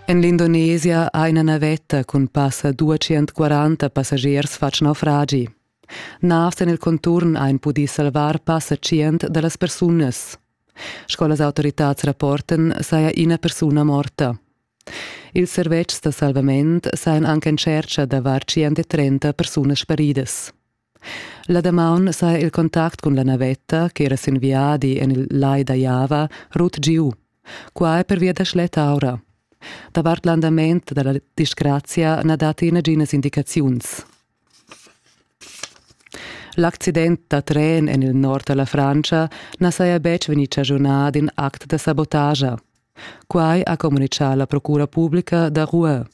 En l'Indonesia ha ina navetta cun passa 240 passagiers fatg naufragi. Navs en il conturn han pudì salvar passa 100 da las persunas. Sco las autoritads rapportan, saja ina persuna morta. Ils servetschs da salvament sajan anche in tschercha da var 130 persunas sparidas. La damaun saja il contact cun la navetta ch'era sin viadi en il Lai da Java rut giu. Qua è pervia da schletta aura. Davart l'andament da la disgrazia na datti naginas indicaziuns. L'accident da tren en il nord da la Frantscha na saja betg vegnì chagiunà d'in act da sabotagia. Quai ha communitgà la procura publica da Rouen.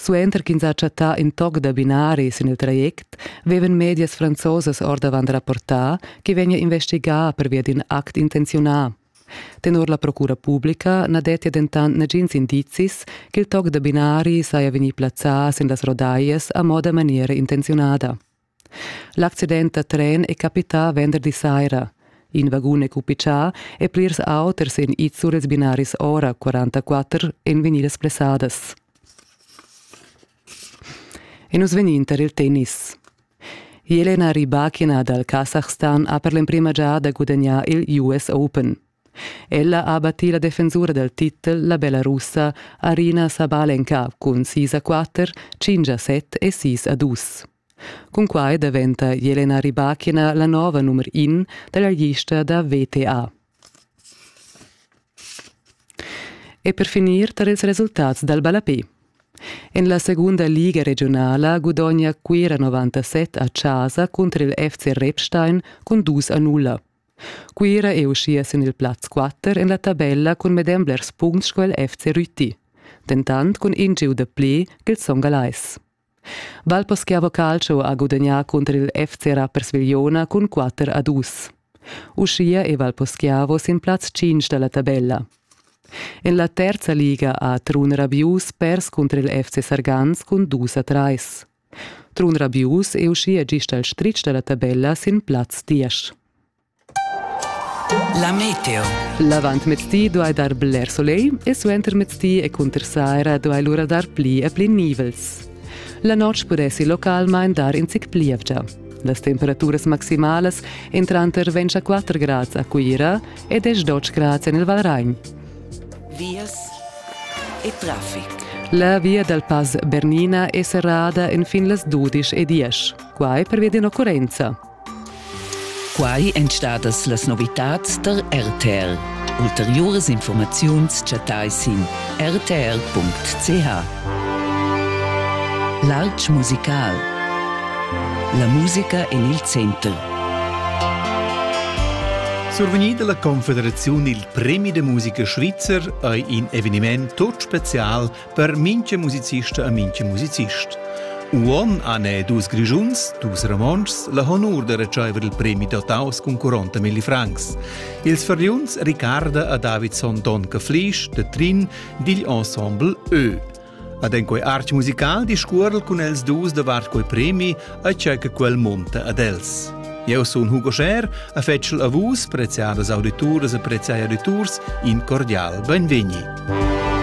Suenter ch'ins ha chattà in toc da binari sin il traject, vevan medias franzosas ordavant rapportà ch'i vegnia investigà pervia d'in act intenziunà. Tenor la procura publica na dettia dentant nagins indizis ch'il toc da binari saja vegnì plazzà sin las rodaias a moda maniera intenziunada. L'accident da tren è capità venderdi saira. In vagun è cupichà e plirs auters en Izzurez binaris ora 44 èn vegnidas blessadas. E nus vegnin tar il tennis. Jelena Rybakina dal Kasachstan ha per l'emprima giada gudagnà il US Open. Ella ha battì la defensura dal titel la Belarussa Arina Sabal en cap cun sis a quatter, cinc a set e sis a dus. Cunquai daventa Jelena Rybakina la nova numer in da la lista da VTA. E per finir tar ils resultats dal ballapé. En la segunda liga regionala gudogna Cuira 97 a Chasa cunter il FC Repstein cun dus a nulla. Cuira è uschia sin il plaz 4 en la tabella cun medem blers puncts sco il FC Rüti, dentant cun in giu da pli ch'il Son Galeis. Valposchiavo Calcio ha gudagnà cunter il FC Rappers Vigliona cun 4 a 2. Uschia è Valposchiavo sin plaz 5 da la tabella. En la terza liga ha Trun Rabius pers cunter il FC Sargans cun 2 a 3. Trun Rabius è uschia gist al stritg da la tabella sin plaz diesch. La meteo. L'avantmezdi duai dar bler soleil e suentermezdi e cunter saira duai lura dar pli e pli nivels. La notg pudessi localmain dar in zic plievgia. Las temperaturas maximalas entranter 24 grads a Cuira e 10 grads en il Valragn. vias e traffic. La via dal Pass Bernina è serrada enfin las dudisch e diesch. Quai pervia d'in'occurrenza. Quai èn stadas las novitads da RTL. Ulteriuras informaziuns chattai sin rtl.ch. L'altsch musical. La musica en il center. Survegnì dalla Confederaziun il Premi de musica svizzer ei in eveniment tut special per minche musicista e minche musicist. Uon han dus Grischuns, dus Romontschs, la honur de ricevere il premi dotaus cun 40 milli francs. Ils feriuns Ricarda e Davidson Donca Flisch de Trin digl ensemble Ö. Ad en quei arch musical discuorel cun els dus davart quei premi e tgei che quel monta ad els. Eu sun Hugo Scher, a fetschel a vus, preziadas audituras e preziai auditurs, in cordial benvegni.